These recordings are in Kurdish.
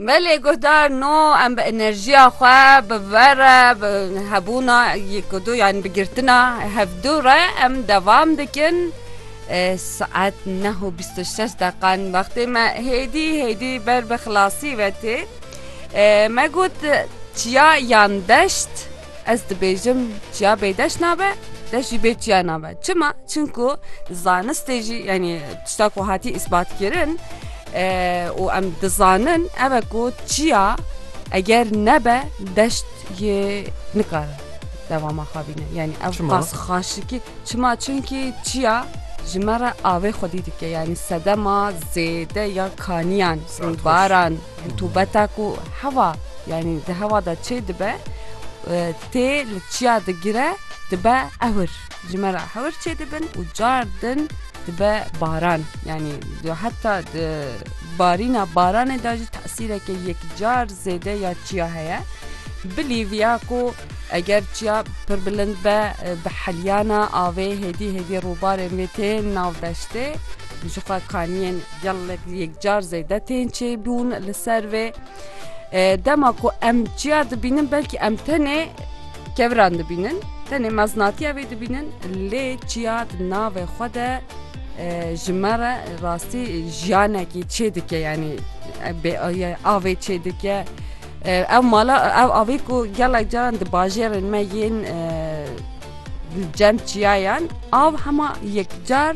Belê guhdar no em bi enerjiya xwe bi ver re bi hebûna yekdu yan bi girtina hevdû re em devam dikin saet neh û bîst û şeş deqan wextê me hêdî hêdî ber bi xilasî ve tê me got çiya yan deşt Ez dibêjim çiya bêdeş nabe, deş jî bê çiya nabe. Çima? Çimku zanistê jî yanî tişta ku hatî îsbatkirin û em dizanin ev e ku çiya eger nebe deşt yê nikare dewama xwe bîne. Yanî ev qas xaşikî çima çimkî çiya ji me re avê xwedî dike yanî sedema zêde ya kaniyan baran. Rutûbeta ku hewa yanî di hewa de çê dibe tê li çiya digire dibe ewir. Ji me re hewir çê dibin û car din dibe baran. Yanî heta di barîna baranê de jî tesîreke yekcar zêde ya çiya heye. Bilî viya ku eger çiya pir bilind be bi heliyana avê hêdî hêdî rûbarên wê tên nav deştê jixwe kaniyên Gelek yekcar zêde tên çêbûn li ser vê. Dema ku em çiya dibînin belkî em tenê keviran dibînin, tenê meznatiya vê dibînin lê çiya di navê xwe de ji me re rastî jiyanekî çê dike yanî avê çê dike. Ew mala ew avê ku gelek caran di bajêrên me yên cem çiyayan av hema yekcar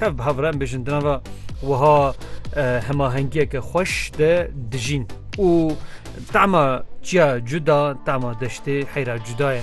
Tev bi hev re em bêjin di nava wiha hemahengiyeke xweş de dijîn û tema çiya cuda, tema deştê heyra cuda ye.